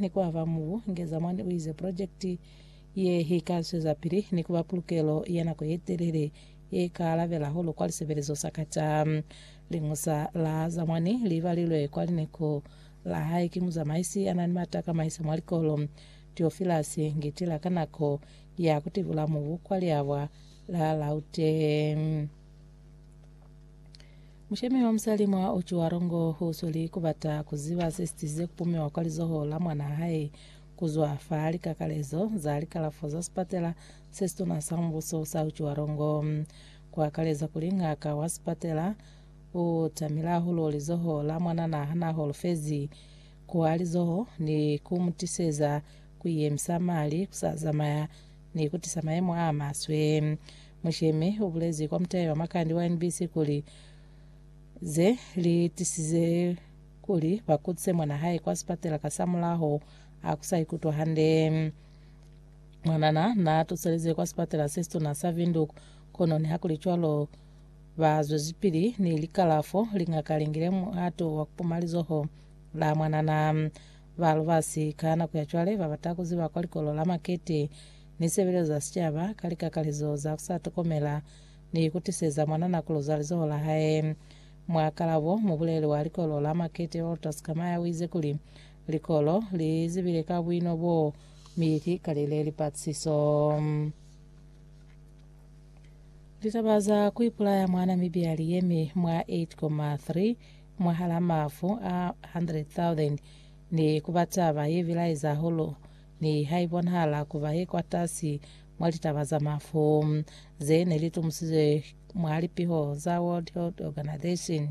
ni ku aba mubu. Ngezamani u ize, Pulojekiti ye i ka zwezapili ni ku ba pulukelo ya nako ye telele ye ka alabela hahulu kwa lisebelezo sa ka ta Liñusa la Zamani li balilwe kwa lineko la hae ki muzamaisi ya na ni mata a ka maisa mwa likolo, Tiofilasi Ngitila ka nako ya ku tibula mubu kwa liabwa la Lauteng. Mushemi wa musali mwa Otjiwarongo u sweli ku bata ku ziba se sitizize ku pumiwa kwa lizoho la mwanaa hae ku zwa fa likakalezo za likalafo za sipatela se situna sa mubuso sa Otjiwarongo, ku akaleza kuli ngaka wa sipatela u tamile hahulu lizoho la mwananaa ha naa holofezi ku wa lizoho ni ku mu tiseza ku iyemisa mali ku sa zamaya. ni kutisa mayemo a maswe. Mushemi ubulezi kwa mutayi wa makandi wa NBC kuli, Ze li tisize kuli ba kutise mwana hae kwa sipatela kasamulaho a ku sa ikutwa hande. Mwanana na tuselezwe kwa sipatela se situna sa Windhoek, kono nihakulicwalo ba zwezipili ni likalafo. Lingaka lingile muhato wa kupuma lizoho la mwanana. Ba lubasi ka nako ya cwale ba bata ku ziba kwa likolo la makete ni sebelezo za sicaba ka likakalezo za ku sa tokomela ni ku tiseza mwanana ku luza lizoho la hae. Mwa kalabo, mubuleli wa likolo la makete Walter Skamaya u ize kuli, Likolo li zibile ka buino boo mi li kalile lipatisiso. Litaba za ku ipulaya mwa Namibia li yemi mwa 8,3 mwahal'a mafu a 100,000, ni ku ba taba ye bilaeza hahulu ni ha i bonahala ku ba ye kwatasi mwa litaba za mafu ze ne li tumusizwe mwa lipiho za World Health Organization.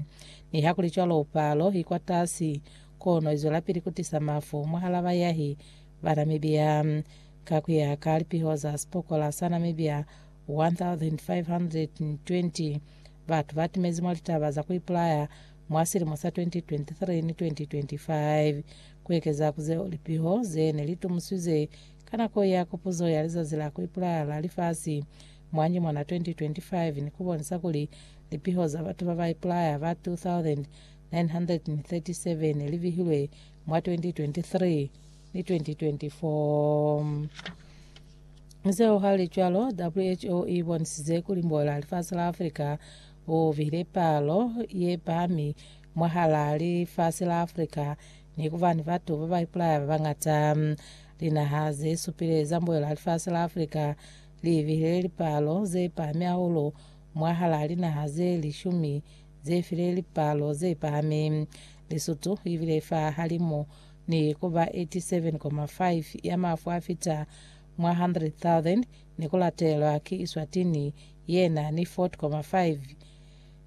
Nihakulicwalo, palo i kwatasi, kono i zwelapili ku tisa mafu mwahal'a bayahi ba Namibia. Ka ku ya ka lipiho za Sipokola sa Namibia, 1,520 batu ba timezi mwa litaba za ku ipulaya mwa silimo sa 2023 ni 2025, ku ekeza ku zeo lipiho ze ne li tumusizwe ka nako ya Kopuzo ya Lizazi la ku Ipulaya la Lifasi mwa nyumwana 2025 ni ku bonisa kuli lipiho za batu ba ba ipulaya ba 2,937 li bihilwe mwa 2023. ni 2024. Zeo hali cwalo, who i bonisize kuli mbola lifasi la Africa u bihile palo ye pahami mwahala lifasi la Africa ni ku ba ni batu ba ba ipulaya ba bañata. Linaha ze supile za mbola lifasi la Africa li bihile lipalo ze pahami hahulu mwahala linaha ze lishumi ze file lipalo ze pahami. Lesotho i bile fa halimu ni ku ba 87.5 ya mafu a fita mwa 100,000 ni ku latelwa ki Eswatini ye na ni 40.5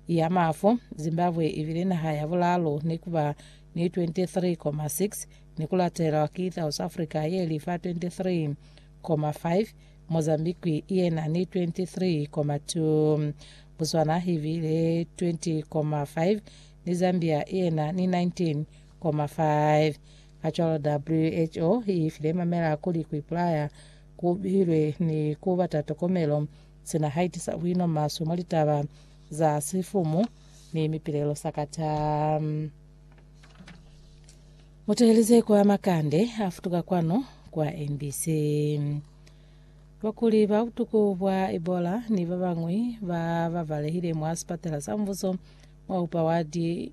ya mafu. Zimbabwe i bile naha ya bulalu ni ku ba ni 23.6 ni ku latelwa ki South Africa ye li fa 23.5. Mozambique ye na ni 23.2. Botswana i bile 20.5 ni Zambia ye na ni 19.4. 2.5. Kacwalo WHO i file mamela kuli ku ipulaya ku bilwe ni ku bata tokomelo sina haitisa buino maswe mwa litaba za sifumu ni mipilelo sakata. Muteheleze kwa makande afutuka kwanu kwa NBC. Bakuli ba butuku bwa Ebola ni babañwi ba babalehile mwa sipatela sa mbuso mwa upa wadi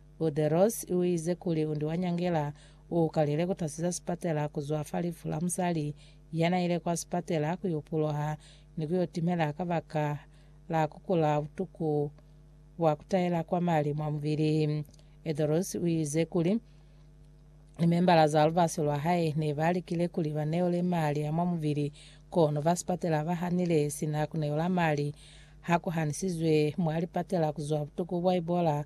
Buderos uize kuli undi wa nyangela uukalile kutasiza sipatela kuzwa fa lifu la musali yanaile kwa sipatela kuyo puloha ni kuyo timela kabaka la kukula butuku bwa kutahela kwa mali mwa mubili. Edros uize kuli limembala za lubasi lwahae nebalikile kuli baneole mali a mwa mubili kono ba sipatela bahanile sina kuneola mali hakuhanisizwe mwa lipatela kuzwa butuku bwa Ebola